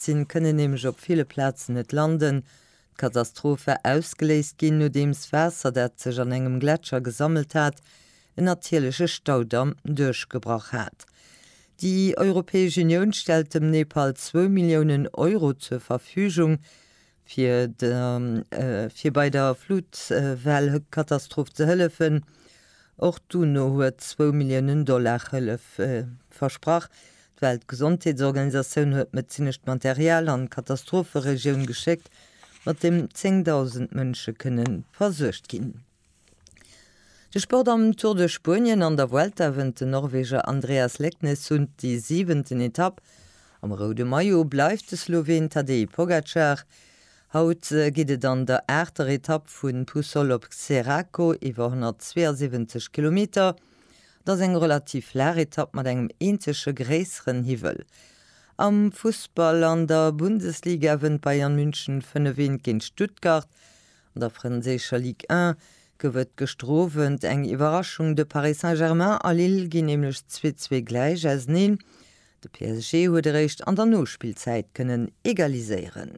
gestierzt sinn, kënnen nämlech op ville Plazen net landen. D'Katastroph war ausgeléist ginn, nodeems Waasser, dat sech an engem Gletscher gesammelt hat, en natierleche Staudamm duerchgebrach hat. Déi Europäesch Unioun stellt dem Nepal zwou Milliounen Euro zur Verfügung, fir bei der Flutwellekatastroph ze hëllefen. Och d'UNO huet zwou Milliounen Dollar Hëllef versprach. D'Weltgesondheetsorganisatioun huet medezinescht Material an d'Katastropheregioun geschéckt, mat deem 10.000 Mënsche kënne versuergt ginn. De Sport am Tour de Spuenien an der Vuelta wënnt den Norweger Andreas Leknes un déi siwenten Etapp. Am roude Maillot bleift de Sloween Tadej Pogacar. Haut geet et an der aachter Etapp vu Puçol op Xeraco iwwer 172 Kilometer. Et ass eng relativ flaach Etapp mat engem eenzege gréisseren Hiwwel. Am Fussball an der Bundesliga wënnt Bayern München 5-1 géint Stuttgart. An der franséischer Ligue 1 gouf et gëschter Owend eng Iwwerraschung, de Paris Saint-Germain a Lille ginn nämlech 2-2 gläich auseneen. De PSG huet eréischt an der Nospillzäit kënnen egaliséieren.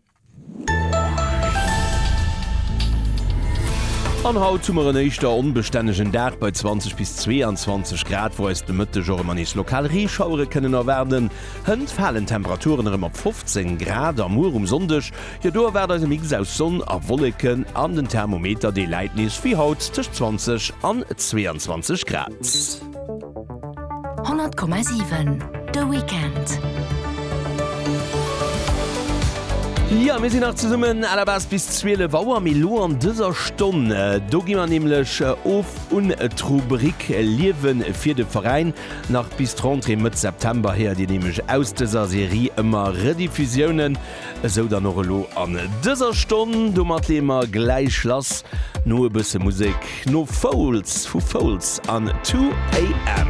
An haut hu mer en éischter onbestännegen Dag bei 20 bis 22 Grad, wou eis de Mëtteg och ëmmer nees lokal Reeschauere kënnen erwaarden. Hënt falen d'Temperaturen erëm op 15 Grad a muer um Sonndeg Jo do erwaart eis e Mix aus Sonn a Wolleken an den Thermometer dee läit nees wéi haut tëscht 20 an 22 Grad. 100,7 de Weekend. Jo mir sinn nach zesummen aller bas bis 12 Auer mee lo an dëser Stonn do gi mer nämlech of un d'Rubrik Liewen fir de Veräin. Nach bis d'Rentrée Mëtt September héiert Dir nämlech aus dëser Serie ëmmer Rediffusiounen Esou dann och elo an dëser Stonn, domat leeë mer gläich lass no e bësse Musek, no Foals vu Foals an 2 AM.